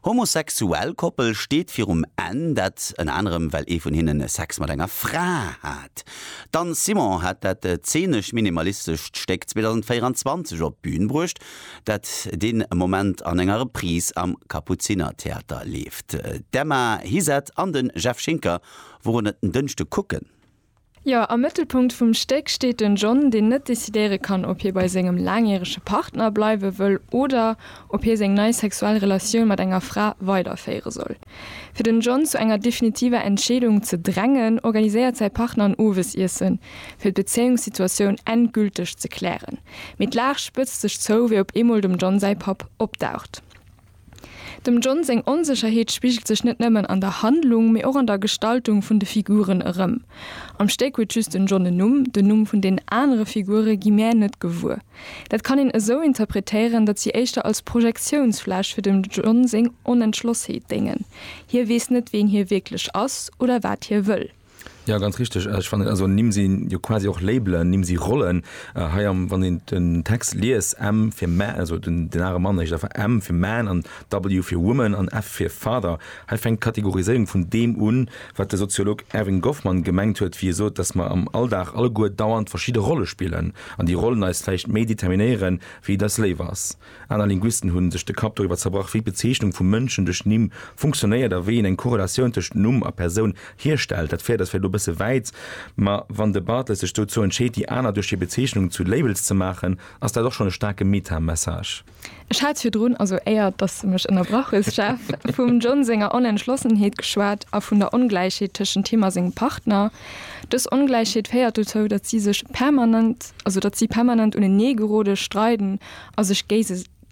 Homosexuell Koppel steet virum Enn, dat ënner anerem well ee vun hinnen Sex mat enger Fra hat. D'Anne Simon hat dat zeenesch-minimalistescht Stéck 2024 op d'Bün bruecht, dat dee Moment an enger Reprise am Kapuzinertheater leeft. D'Emma Hizet an de Jeff Schinker woren et en Dënschde kucken. Jo, am Mëttelpunkt vum Stéck steet den John, deen net decidéiere kann, ob hie bei sengem laangjärege Partner bleiwe wëll oder ob hie seng nei sexuell Relatioun mat enger Fra weiderféiere soll. Fir den John zu enger definitiver Entscheedung ze drängen, organiséiert säi Partner en Owesiessen, fir d'Bezéiungssituatioun endgülteg ze klären. Mee d'Lag spëtzt sech zou, wéi op eemol dem John säi Papp opdaucht. Dem John seng Onsécherheet spigelt sech net nëmmen an der Handlung, mee och an der Gestaltung vun de Figuren erëm. Am Stéck huet just den John en Numm, den Numm vun den anere Figure gi mäer net gewuer. Dat kann een esou interpretéieren, datt si éischter als Projektiounsfläch fir dem John seng Onentschlossheet déngen, hie weess net ween hie wierklech ass oder wat hie wëll. Jo ganz richteg. Ech fannen also Nimm sinn jo quasi och Labelen, Nimm si Rollen. Hei am wann een den Text liest, M fir mä also den den are Mann, heescht einfach M fir man an W fir woman an F fir father. Hei fänkt d'Kategoriséierung vun deem un, wat de Soziolog Erving Goffman gemengt huet, wéi e sot, datt mer am Alldag alleguer dauernd verschidde Rolle spillen an déi Rollen eis vläicht méi determinéieren, wéi et eis léif ass. Aner Linguisten hu sech de Kapp doriwwer zerbrach, wéi d'Bezeechnung vu Mënschen duerch Nimm funktionéiert a wéi een eng Korrelatioun tëscht Numm a Persoun hierstellt. Dat féiert eis vläicht elo e bësse wäit, ma wann de Barthes sech dozou entscheet, déi aner duerch hir Bezeechnungen zu Labels ze maachen, ass dat och schonn e staarke Meta-Message. Ech hat virdrun, also éier datt s de mech ënnerbrach hues, Jeff, vum John senger Onentschlossenheet geschwat a vun der Ongläichheet tëschent him a sengem Partner. Dës Ongläichheet féiert dozou, datt si sech permanent, also datt si permanent uneneegerode, streiden a sech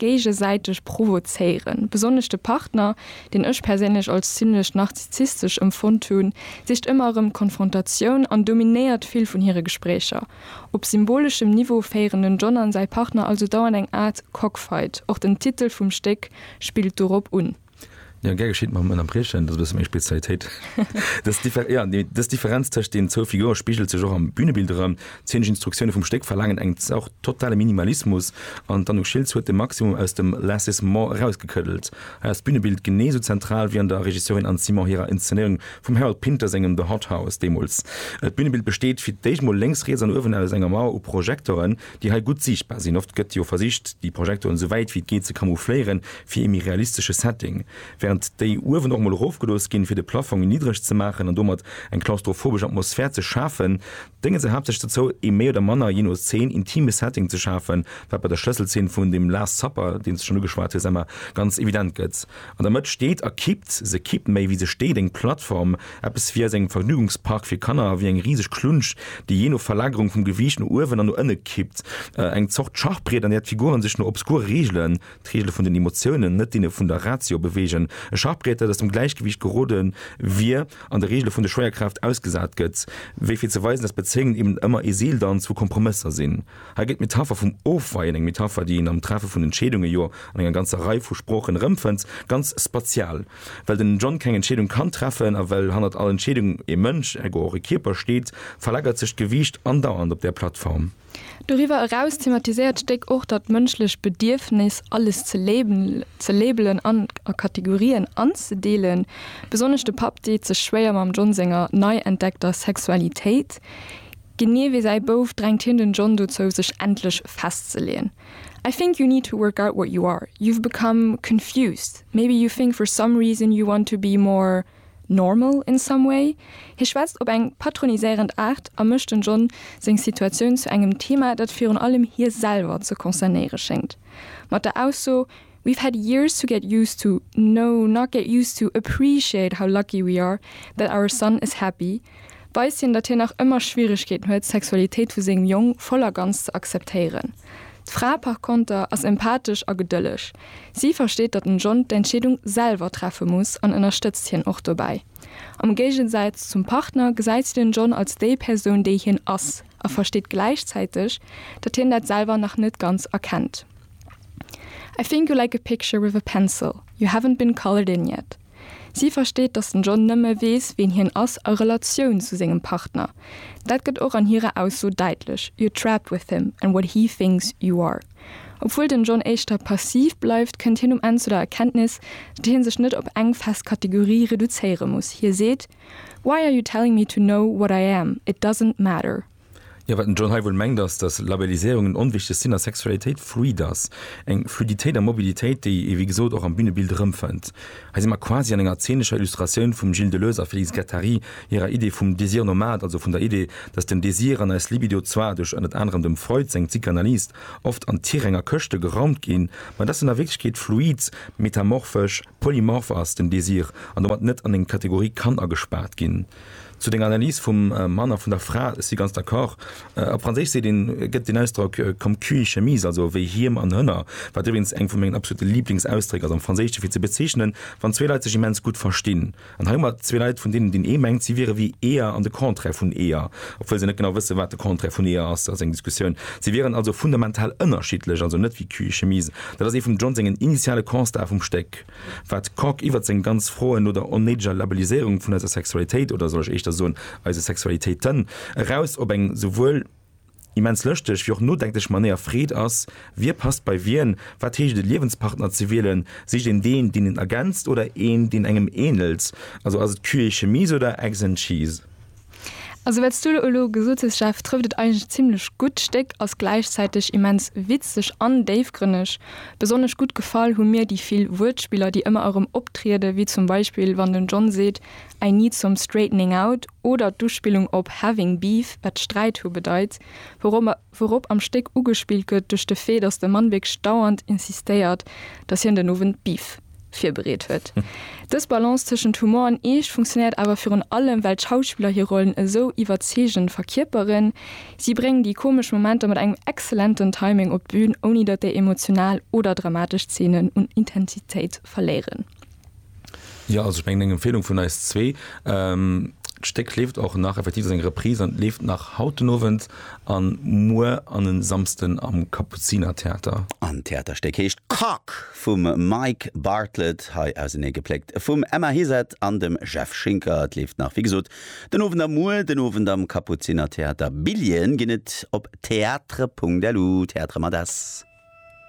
géigesäiteg provozéieren. Besonnesch de Partner, deen ech perséinlech als zimlech narzissistesch emfonnt hunn, sicht ëmmer erëm d'Konfrontatioun an dominéiert vill vun hire Gespréicher. Op symboleschem Niveau féieren den John an säi Partner also dauernd eng Aart Cockfight, och den Titel vum Stéck spillt dorop un. Ja, gär geschitt, mam Ënnerbriechen, dat ass e bësse meng Spezialitéit. Dës Differ-, ja, déi, dës Differenz tëscht deenen zwou Figure spigelt sech och am Bünebild erëm. D'zeenesch Instruktioune vum Stéck verlaangen eng Zort totale Minimalismus an d'Anouk Schiltz huet de Maximum aus dem Lassissement erausgekëddelt. Hei ass d'Bünebild genee sou zentral wéi an der Regisseurin Anne Simon hirer Inszenéierung vum Harold Pinter sengem The Hot House deemools. D'Bünebild besteet fir d'éischt mol lénks, riets an uewen aus enger Mauer u Projektoren, déi hei gutt siichtbar sinn. Oft gëtt jo versicht, déi Projektoren esou wäit wéi et geet ze camoufléieren. fir ee méi realistesche Setting, während déi uewen och mol erofgelooss ginn, fir de Plafong méi niddreg ze maachen an domat eng klaustrophobesch Atmosphär ze schafen, dénge se haaptsächlech dozou, ee méi oder manner, jee no Zeen, intime Setting ze schafen, wat bei der Schlësselzeen vun dem Last Supper, deen s de schonn ugeschwat hues, Emma, ganz evident gëtt. An der Mëtt steet a kippt se, kippt méi, wéi se steet, eng Plattform, eppes wéi aus engem Vergnügungspark fir Kanner, wéi eng riseg Klunsch, déi jee no Verlagerung vum Gewiicht no uewen an no ënne kippt, eng Zort Schachbriet, an där d'Figuren sech no obskure Reegelen d'Regele vun den Emotiounen, net deene vun der Ratio, beweegen, e Schachbriet, dat aus dem Gläichgewiicht gerode wier, an de Regele vun der Schwéierkraaft ausgesat gëtt, wéi fir ze weisen, datt Bezéiungen eben ëmmer ee Seeldanz vu Kompromësser sinn. Hei gëtt d'Metapher vum Ofweien, eng Metapher, déi een am Treffe vun Entscheedunge jo an enger ganzer Rei vu Sproochen erëmfënnt, ganz spatial. Well den John keng Entscheedung kann treffen a well hannert all Entscheedung e Mënsch, ergo och e Kierper, steet, verlagert sech d'Gewiicht andauernd op där Plattform. Doriwwer eraus thematiséiert d'Stéck och dat mënschlecht Bedierfnis, alles ze labelen an a Kategorien anzedeelen. Besonnesch de Papp deet sech schwéier mam John senger nei entdeckter Sexualitéit. Genee wéi säi Bouf drängt hien den John dozou, sech endlech festzeleeën, I think you need to work out what you are. You've become confused. Maybe you think for some reason you want to be more. normal in some way? Hie schwätzt op eng patroniséierend Aart a mécht den John seng Situatioun zu engem Thema, dat virun allem hie selwer ze concernéiere schéngt, mat der Ausso We've had years to get used to, no, not get used to, appreciate how lucky we are that our son is happy, weist hien, datt hien nach ëmmer Schwieregkeeten huet, d'Sexualitéit vu sengem Jong voll a ganz ze akzeptéieren. D'Fra par konter ass empathesch a gedëlleg. Si versteet, datt den John d'Entscheedung selwer treffe muss an ënnerstëtzt hien och dobäi. Am Géigesäitz zum Partner gesäit si den John als déi Persoun, déi hien ass a versteet gläichzäiteg, datt hien dat selwer nach net ganz erkennt. I think you like a picture with a pencil you haven't been colored in yet. Si versteet, datt den John nëmme weess, ween hien ass a Relatioun zu sengem Partner. Dat gëtt och an hirer Ausso däitlech, You're trapped with him and what he thinks you are. Obwuel den John éischter passiv bleift, kënnt hien um Enn zu der Erkenntnis, datt hie sech net op eng fest Kategorie reduzéiere muss. Hie seet, Why are you telling me to know what I am? It doesn't matter. Jo, wat den John hei wuel mengt ass, datt Labelliséierung en onwichtegt sinn a Sexualitéit fluid ass, eng Fluiditéit a Mobilitéit, déi ee wéi gesot och am Bünebild erëmfënnt. Hei si mer quasi an enger zenescher Illustratioun vum Gilles Deleuze a Félix Guattari hirer Idee vum Désir nomade, also vun der Idee, datt den Désir an eis Libido zwar duerch ënnert anerem dem Freud seng Psychanalyse oft an d'Tier enger Këschte geraumt ginn, ma datt en a Wierklechkeet fluid, metamorphesch, polymorph ass, den Désir, an domat net an eng Kategorie kann agespaart ginn. Zu denger Analys vum Mann a vun der Fra, ech si ganz d'accord. Op Franséisch seet een, gëtt den Ausdrock comme cul et chemise, also wéi Hiem an Hënner, wat iwwregens eng vu mengen absolute Lieblingsausdréck ass am Franséischen, fir ze bezeechnen, wann zwee Leit sech immens gutt verstinn. An hei hu mer zwee Leit, vun deenen deen ee mengt, si wiere wéi Eeër an de Contraire vun Eeër, obwuel se net genau wëssen, wat de Contraire vun Eeër ass, dat ass eng Diskussioun, si wieren also fundamental ënnerschiddlech, also net wéi cul et chemise. Dat ass ee vum John sengen initiale Constatë vum Stéck. Wat d'Coque iwwert seng ganz Froen no der onnéideger Labelliséierung vun eiser Sexualitéit, oder soll ech éischter soen, eise Sexualitéiten, eraus op eng souwuel immens lëschteg wéi och nodenklech Manéier freet, ass, Wie passt bei wien? Wat heescht et, e Liewenspartner ze wielen? Sicht een deen, deen een ergänzt, oder een, deen engem änelt? Also ass et Cul et chemise oder Eggs and cheese? Also wats du elo gesot hues Jeff, trëfft et eigentlech zimlech gutt. D'Stéck ass gläichzäiteg immens witzeg an déifgrënneg. Besonnesch gutt gefall hu mir déi vill Wuertspiller déi ëmmer erëm optrieden, wéi zum Beispill wann den John seet I need some straightening out oder d'Uspillung op having beef, wat Sträit hu bedeit, wourop mer wourop am Stéck ugespillt gëtt duerch de Fait, datt de Mann wierklech dauernd insistéiert, datt hien den Owend Beef virbereet huet. Dës Balance tëschent Humor an Eescht funktionéiert awer virun allem, well d'Schauspiller hir Rollen esou iwwerzeegend verkierperen. Si bréngen déi komesch Momenter mat engem exzellenten Timing op d'Bün, ouni datt déi emotional oder dramatesch Zeenen un Intensitéit verléieren. Jo also ech mengen eng Empfehlung vun eis zwee. D'Stéck leeft och nach, effektiv ass eng Reprise an leeft nach haut den Owend a muer an e Samsden am Kapuzinertheater. An d'Theaterstéck heescht Cock vum Mike Bartlett, hei auseneegepléckt vum Emma Heset an dem Jeff Schinker. Et leeft nach, wéi gesot, den Owend a muer den Owend am Kapuzinertheater. Billjeeën ginn et op theatre.lu, Theatre mat s.